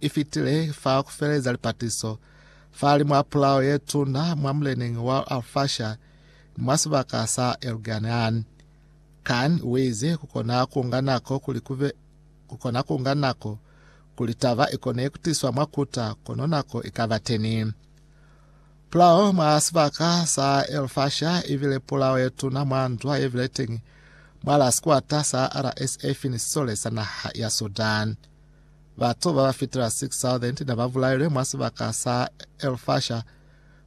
i fitile fa ku feleza lipatiso fahali mwa pulao ye tuna mwa muleneñi wa Al-Fasher ni mwa sibaka sa Elganean. Khan uize ku kona ku nga nako kuli ku be ku kona ku nga nako kuli taba i kone ku tiswa mwa Quetta kono nako i ka ba teni. Pulao mwa sibaka sa Al-Fasher i bile pulao ye tuna mwa ndwa ye bile teñi mwa la sikwata sa RSF ni sisole sa naha ya Sudan. Batu ba ba fitela 6,000 ne ba bulailwe mwa sibaka sa El Fasher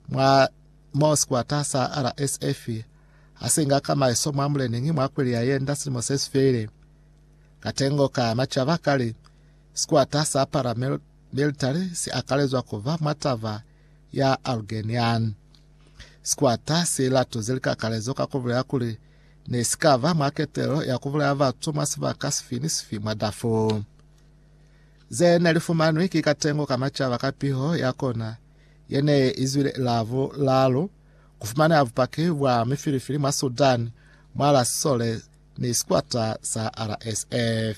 mwa mo sikwata sa RSF ha si nga ka maeso mwa muleneñi mwa kweli ya yenda silimo se si feile. Katengo ka macaba kali sikwata sa paramilitary si akalezwa ku ba mwa taba ya Algerian. Sikwata si latuze likakalezo ka ku bulela kuli ne si ka ba mwa ketelo ya ku bulaya batu mwa sibaka sifi ni sifi mwa Darfur. Ze ne li fumanwi ki katengo ka macaba ka piho ya kona ye ne i zwile la bulalu ku fumaneha bupaki bwa mifilifili mwa Sudan mwa la sisole ni sikwata sa RSF.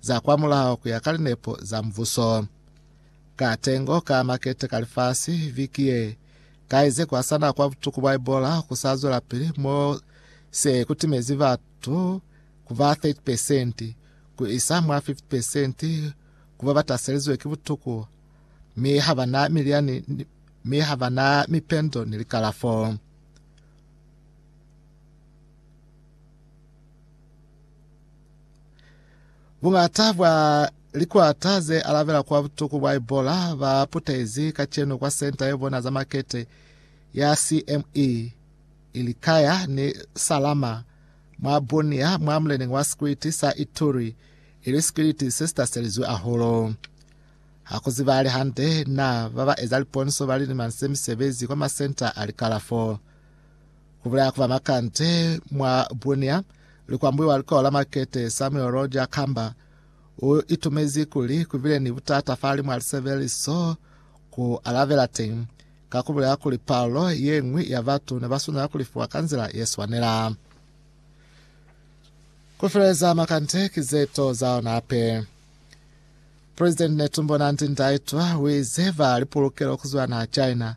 za kwa mulao ku ya ka linepo za Mubuso. Ka tengo ka makete ka lifasi viki ye, kaize kwa sa na kwa butuku bwa Ebola ku sa zwelapili mo se ku timezi batu ku ba 30 percent ku isa mwa 50 percent ku ba ba taselizwe ki butuku mi ha ba na miliani mi ha ba na mipendo ni likalafo. Buñata bwa likwata ze alabela kwa butuku bwa Ebola ba putezi kacenu kwa senta ye bona za makete ya CME ilikaya ni Salama mwa Bunia mwa muleneng wa sikwiti sa Ituri ili sikwiti se sitaselizwe aholo. Ha ku zibale hande na ba ba eza liponso ba lilima se misebezi kwa masenta a likalafo. Ku bulaya ku ba bakante mwa Bunia li kwambuiwa likao la makete, Samuel Roger Kamba u itumezi kuli ku bile ni butata fahali mwa lisebeliso ku alabela teñi, ka ku bulaya kuli palo ye ñwi ya batu ne ba swanela ku lifiwa ka nzila ye swanela. Ku feleza makante ki ze to za ona hape. President Netumbo Nandi-Ndaitwah u ize ba li pulukelo ku zwa naha China